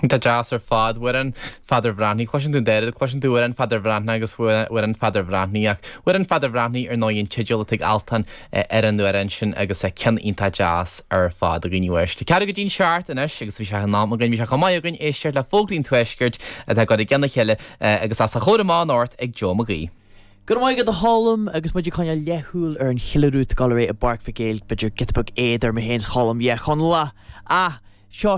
Iontach deas ar fad Amhrán Pheadair Bhreathnaigh. Cloiseann tú an dá rud, cloiseann tú Amhrán Pheadair Bhreathnaigh agus Amhrán Pheadair Bhreathnaigh ach Amhrán Pheadair Bhreathnaigh ar ndóigh an teideal atá ag Altan ar an amhrán sin agus ceann iontach deas ar fad againn uait. Tá ceathrú go dtí'n seacht anois agus bhí sé in am againn, bhí sé chomh maith againn éisteacht le Fógraí an Tuaiscirt atá curtha i gceann a chéile agus os a chomhair amach anocht ag Joe Mag Aoidh. Go raibh maith agat a Cholm, agus muid ag coinneáil leathshúil ar an cheiliúradh go léir i bPáirc Mhic Éil, b'fhéidir giota beag éad orm féin a Cholm, yeah, Chonallach! Ah! Seo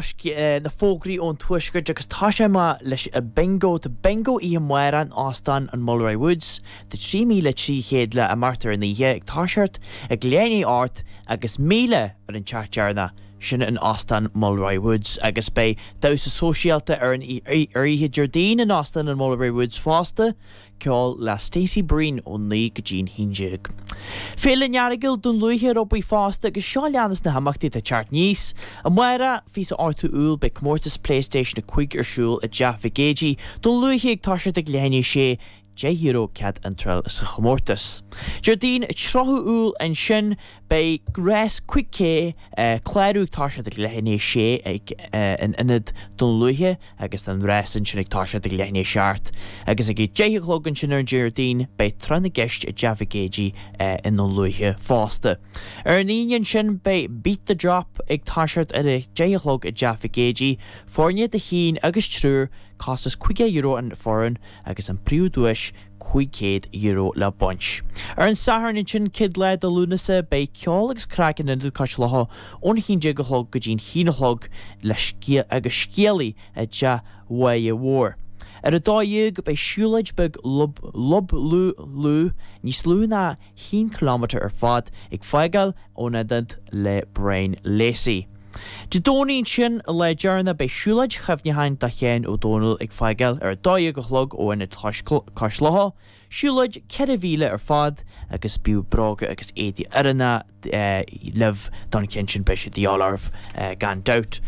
na fógraí ón tuaisceart agus toiseoidh mé leis a' bingo, tá bingo oíche amárach in Óstán an Mulroy Woods, tá 3,300 le baint ar an oíche ag toiseacht ag leath i ndiaidh a hocht agus 1,000 ar an teach deireanach, sin in Óstán Mulroy Woods agus beidh damhsa sóisialta ar an oíche Déardaoin in Óstán an Mulroy Woods fosta, ceol le Stacey Breen ón naoi go dtí'n haon déag. Féile an Eargail Dún Lúiche ar obair fosta agus seo a leanas na himeachtaí atá ag teacht aníos amárach, 28ú Iúil beidh comórtas Playstation 5 ar siúl i dTeach Mhic Géidigh Dún Lúiche ag toiseacht ag leath i ndiaidh a 6, €10 cead iontráil sa chomórtas. Déardaoin 30 Iúil ansin Beidh rás 5K clárú ag toiseacht ag leath i ndiaidh a 6 ag an ionad Dún Lúiche agus an rás ansin ag toiseacht ag leath i ndiaidh a 7 agus ag a deich a chlog ansin ar an Déardaoin beidh Tráth na gCeist i dTeach Mhic Géidigh i nDún Lúiche fosta. Ar an Aoine ansin beidh Beat the Drop ag toiseacht ar a deich a chlog i dTeach Mhic Géidigh, foirne de chinn agus triúr, costas €50 an foireann agus an príomhdhuais, €500 le baint. Ar an Satharn ansin, 1ú lá de Lúnasa, beidh ceol agus craic in Ionad Cois Locha ón 11 a chlog go dtí'n haon a chlog le scéal agus scéalaí i dTeach Mháighe Mhóir. Ar a dó dhéag, beidh siúlóid beag lub lub loo loo, níos lú ná haon chiliméadar ar fad ag fágáil ón ionad le Brian Lacey. Dé Domhnaigh ansin, lá deireanach, beidh siúlóid chuimhneacháin do Sheán Ó Domhnaill ag fágáil ar a dó dhéag a chlog ó Ionad Cois Locha, siúlóid ceithre mhíle ar fad agus bíodh bróga agus éadaí oiriúnacha libh don cheann sin, beidh siad de dhíth oraibh gan dabht.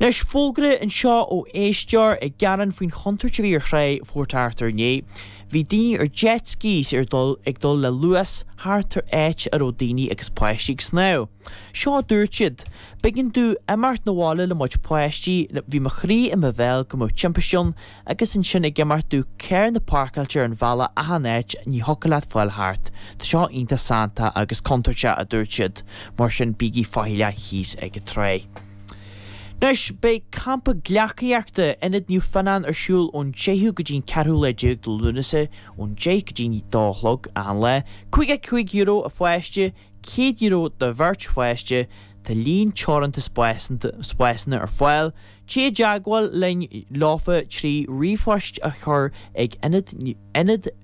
Anois, fógra anseo ó éisteoir ag gearán faoin chontúirt a bhí ar Thrá Phort Arthur inné. Bhí daoine ar jet skis ar dul ag dul le luas thart ar áit a raibh daoine agus páistí ag snámh. Seo a dúirt siad, B'éigean domh imeacht 'na bhaile le mo chuid páistí nó bhí mo chroí i mo bhéal go mbeadh timpist ann agus ansin ag imeacht domh carranna páirceáilte ar an bhealach achan áit ní thiocfadh leat fáil thart. Tá seo iontach santach agus contúirteach a dúirt siad, mar sin bígí faichilleach thíos ag an trá. Anois, beidh campa gleacaíochta Ionad Naomh Fionnán ar siúl ón 10ú go dtí'n 14ú lá de Lúnasa ón 10 go dtí'n 2 a chlog achan lá. €55 a pháiste, €100 do bheirt pháiste. Tá líon teoranta spásanna ar fáil. Téigh i dteagmháil linn leofa trí ríomhphost a chur ag Ionad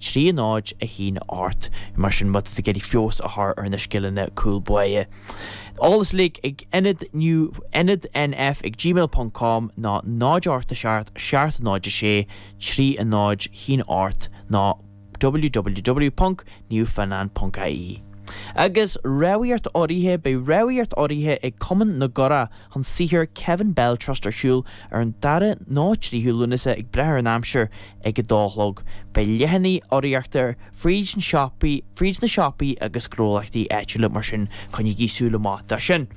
Tríonóid a shín ort. Mar sin, má tá tú ag iarraidh feabhas a chur ar na scileanna cúl báire, eolas uilig ag Ionad New Ionad NF ag gmail ponc com nó 0 Ort a Seart Seart 0 6 Tríonóid shín ort nó www.newfoundland.ie Agus rabhadh ort áirithe, beidh rabhadh ort áirithe ag Cumann na gCuradh, chun sochair Kevin Bell Trust ar siúl ar an dara nó tríú Lúnasa ag brath ar an aimsir, ag a dó a chlog. Beidh leathanaigh urraíochta fríd na siopaí, fríd na siopaí agus gnólachtaí áitiúla mar sin coinnígí súil amach dó sin.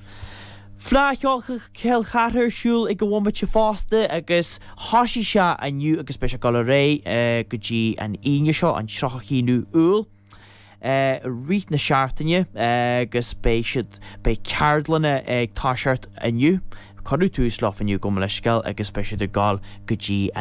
Fleadh Cheoil Chill Chartha ar siúl ag an bhomaite fosta agus thosaigh sé inniu agus beidh sé ag dul ar aghaidh go dtí an Aoine seo, an 31ú Iúil. i rith na seachtaine agus beidh siad, beidh ceardlanna ag toiseacht inniu, cuireadh tús leo inniu gabh mo leithscéal agus beidh siad ag dul go dtí.